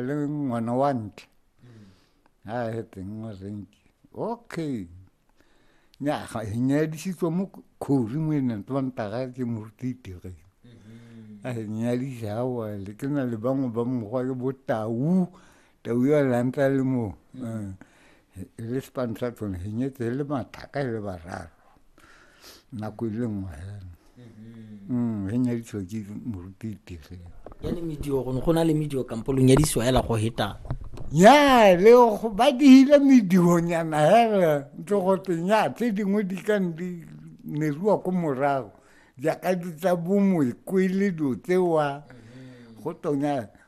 le ngwana wa ntle a eteng wa renke okay nya ga e nyadisitswe mo khori mo ene tlo ntaga ke moruti tere mm-hmm. a e nyadisa wa le ke na le bangwe ba mogwa ke bo tau tau ya lantla le mo mm. eh. le sepantla tsone re nyetse le mathaka le bararo nako e le nngwe fela mm-hmm. mm, re nyaditswa ke moruti tirelo yane medio gone go na le medio kampo lo nyadisiwa fela go heta ya le go ba dihile medionyana fela ntse go teng ya tse dingwe di ka di neriwa ko morago jaaka di tsa bomoekwele dilo tsewa mm-hmm. go tonya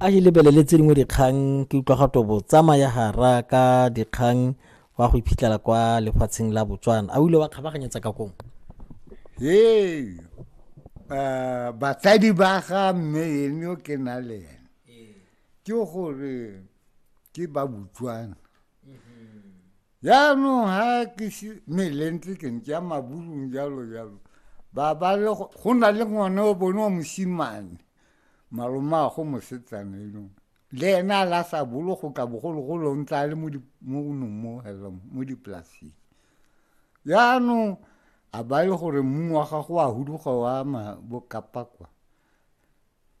a e lebelele tse dingwe dikgang ke utlwa ga tobo tsamaya gara ka dikgang wa go iphitlhela kwa lefatsheng la botswana a o ile wa kgabaganyetsa ka kong ee uh, batsadi ba ga mme ene o ke na le ene ke gore ke ba botswana jaanong ga ke melentse ke ntse ya maburung jalo jalo ba ba le go na le ngwana o bone wa mosimane malomago mosetsana enong le ena a la sa bolo go ka bogologolo o ntse a le mo nong mo hello mo dipolaseng jaanong a ba le gore mmu wa gago wa huduga wa ma bokapakwa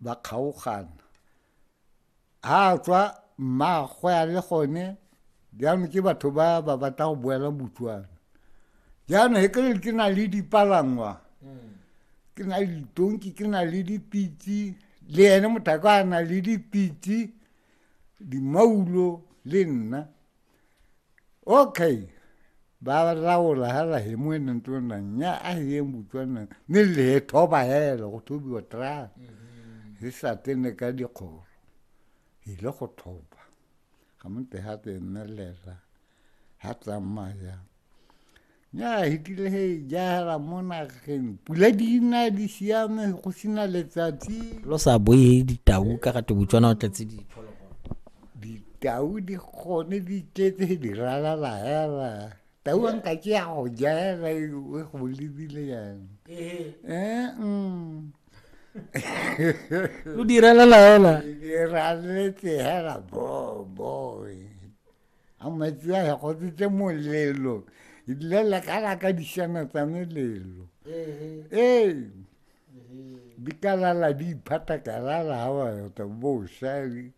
ba kgaogana a tswa mmaagwe a le gone jaanong ke batho ba ba batla go boela botswana jaanong e kere ke na le dipalangwa hmm. ke na le ditonki ke na le dipitse le ene mothako a na le dipitse dimaulo le nna okay ba laola hela he mo ene ntlo na nya a he mo tswana ne le tho ba hela go thobi wa tra se sa tene ka di kgoro e le go thoba ga mo te ha te nne le la ha tla maya ya hitile he jahela mo nageng pula di na di siame go sena letsatsi lo sa boe he ditau ka gate botswana o tletse diphologolo ditau di gone di tletse he di ralala hela tau a nka ke ya go jahela e go lebile yang ee lo di ralala hela di raletse hela boboe a metsi a ya gotsetse molelo ebile le ka la ka dišana tsa melelo ee di ka lala di iphata ka lala ga ba yota bosa di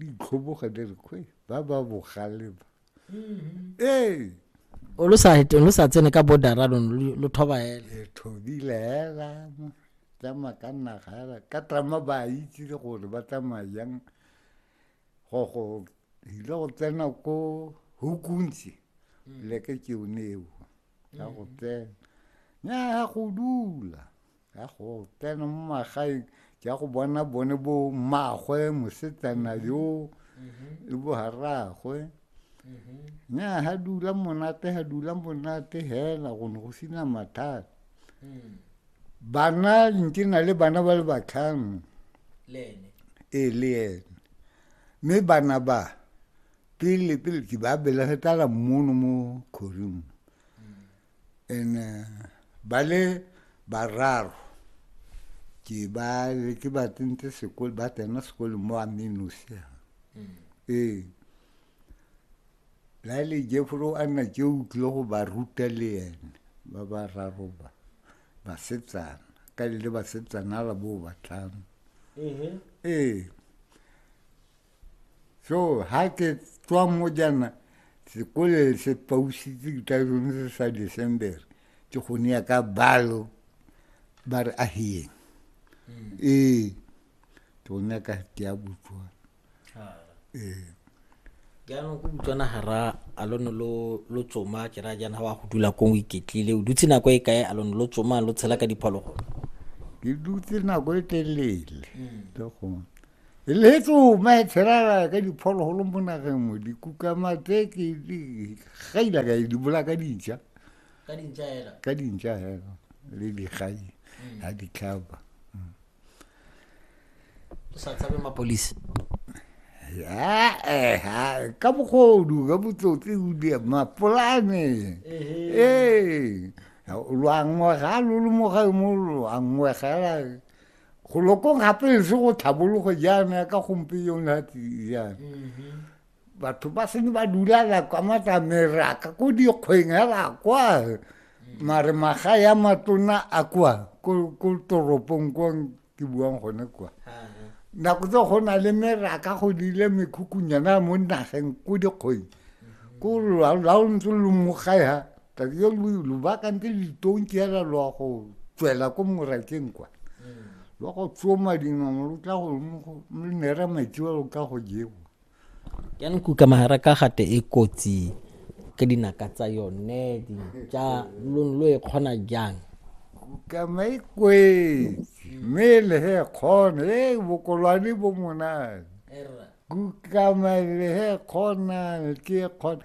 itlhoboga di re kgwe ba ba bogale ba mm-hmm. ee o lo sa lo sa tsene ka bordera lo lo thoba hela le thobile hela tsa makanna ga ka trama ba itse gore ba tsamaya jang go go ile go tsena ko hukuntsi mm. leke ke one eo ya go mm. tsena nya ya go dula ya go tsena mo magaeng ke ya go bona bone bo mmagwe mosetsana mm-hmm. yo mm-hmm. le bo haragwe mm-hmm. nya ha dula monate ha dula monate hela go ne go sina mathata mm. bana ntse na le bana ba le batlhano ee le ene mme bana ba pele pele ke ba belege tala mono mo kgoring and eh, ba le bararo ke ba ke ba tsentse sekolo ba tsena sekolo mo amenosia mm. ee la le jefolo a nna tse o tlile go ba ruta le ene ba ba raro ba basetsana ka le le basetsana la bo batlhano ee so ha ke tswa mo jana sekole se pausitse ke tla sone se sa december ke gone ya ka balo ba re ahiyeng ee ke gone ya ka ke ya botswana jaanong ko botswana ga ra a lo ne lo tsoma ke raya jaana ga wa go dula ko o iketlile o dutse nako e kae a lo ne lo tsoma lo tshela ka diphologolo ke dutse nako e telele le gone e le tsoma e tshela ka diphologolo mo nageng mo dikukama tse ke gaila ka di bola ka dintšha ka dintšha hela le digai ga ditlhaba o sa tshabe mapolisi ka bogodu ka botsotsi o di mapolane ee lwa ngwega lo le mo gae mo lwa ngwegela go lokong gape e se go tlhabologo jaana ka gompe yona jaana batho ba sene ba dulala kwa matlameraka ko dikgweng hela kwa mare maga ya matona a kwa ko toropong kwa ke buang gone kwa nako tse go na le meraka go dile mekhukunyana mo nageng ko dikgweng ko la o ntse lo mogae ha tsatsi yo lo bakantse litonki hela lo go tswela ko morakeng kwa lo go tsoma dinong lo tla go nera metsi wa lo ka go jewa jaanong kuka mahara ka gate e kotsi ka dinaka tsa yone ja lo lo e kgona jang kuka mai kwetsi mme le he kgona e bokolwane bo monane kuka mai le he kgona ke kgona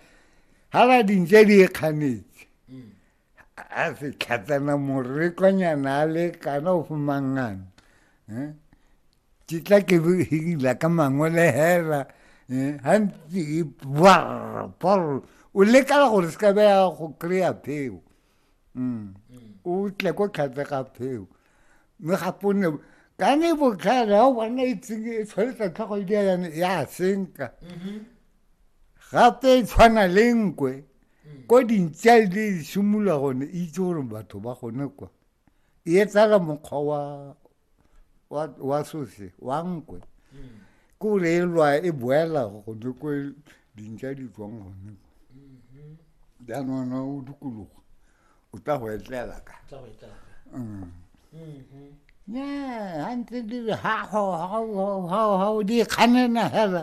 hala dintse di e kganetse mm. a se tlhatsana morekonyana a le kana o fomangana eh? ke tla ke hila ka mangwele hela eh? gantsi e bwrpor o lekala gore se ka beya go kry-a pheo mm. o tle ko tlhatsega pheo mme gape o ne ka ne botlhale ga o bona itseng e tshwanetsa tlhogo e di ya senka mm-hmm. gape e tshwana le nkwe mm. ko dintsa e le simolola gone e itse gore batho ba gone kwa e etsala mokgwa wa wa wa sose wa nkwe mm. ke gore e lwa e boela gone ko dintsa di tswang gone kwa mm-hmm. jaanong o dikologo o tla go etlela ka mm. mm-hmm. ya ha ntse di re ha o di kganena hela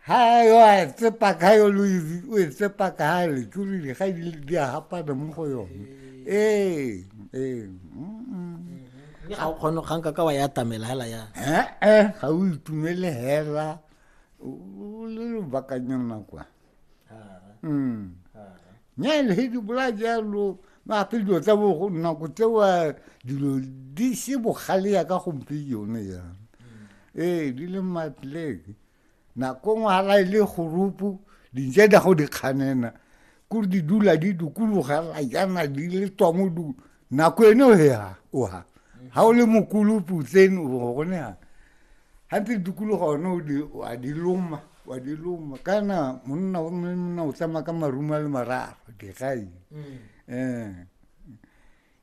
Hai yo a tsepa ka yo Luizi o e tsepa ka ha le tsurile ga di di a hapana mo go yone. Eh eh. Mme ga o kgone ga nka ka wa ya tamela hela ya. Eh eh ga o itumele hela o le lobakanyana kwa. Mm. nna le he di bola jalo gape dilo tsa bogo nako tsewa dilo di se bogale ya ka gompe yone yana ee di le matleke nako ngwe ga la e le gorupu dintse da go di kganena kore di dula di dukologa la jana di le tswa mo nako ene o hea o ha ha o le mokulu putleng o bo gone ha ha ntse dikologa one o di wa di loma wa di loma kana monna o mme monna o tsamaya ka maruma le mararo digai eh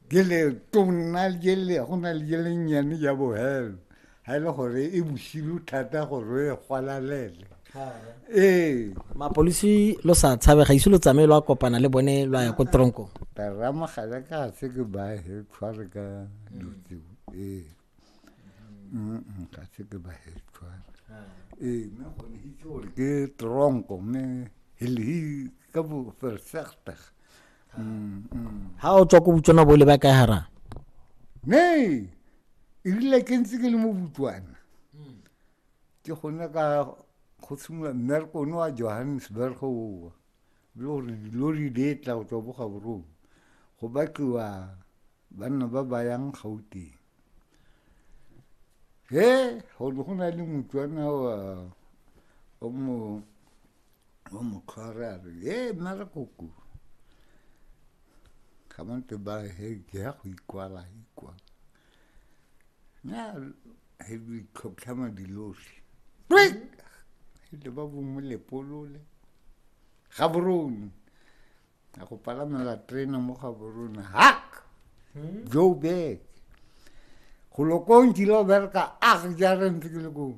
gele tona le gele go na le gele nyane ya bohelo ga e le gore e bosilu thata gore e gwalalele ee mapolisi lo sa tshabe ga ise lo tsamaye lo a kopana le bone lo a ya ko tronko taramogale ka se ke ba he tshware ka dutseo ee ga se ke ba he tshware ee mme gone itse gore ke tronko mme helhi ka bo versegtig ha o tswa ko botswana bo le ba kae hara nee erile ke ntse ke le mo botswana hmm. ke gone ka go tshimolola mmereko one wa johannesburg owa le gore dilori di e tla go tswa boga borong go batliwa banna ba ba yang gauteng he go ne go na le motswana wa o mo o mo tshware a re e nna re koku ga ba ntse ba he ke ya go ikwala ikwala nya he di tlhotlhama dilosi le ba bongwe lepolole ga borone a go palamela terena mo ga borone hak joburg go lokong kile o bereka a jare ntse ke le kong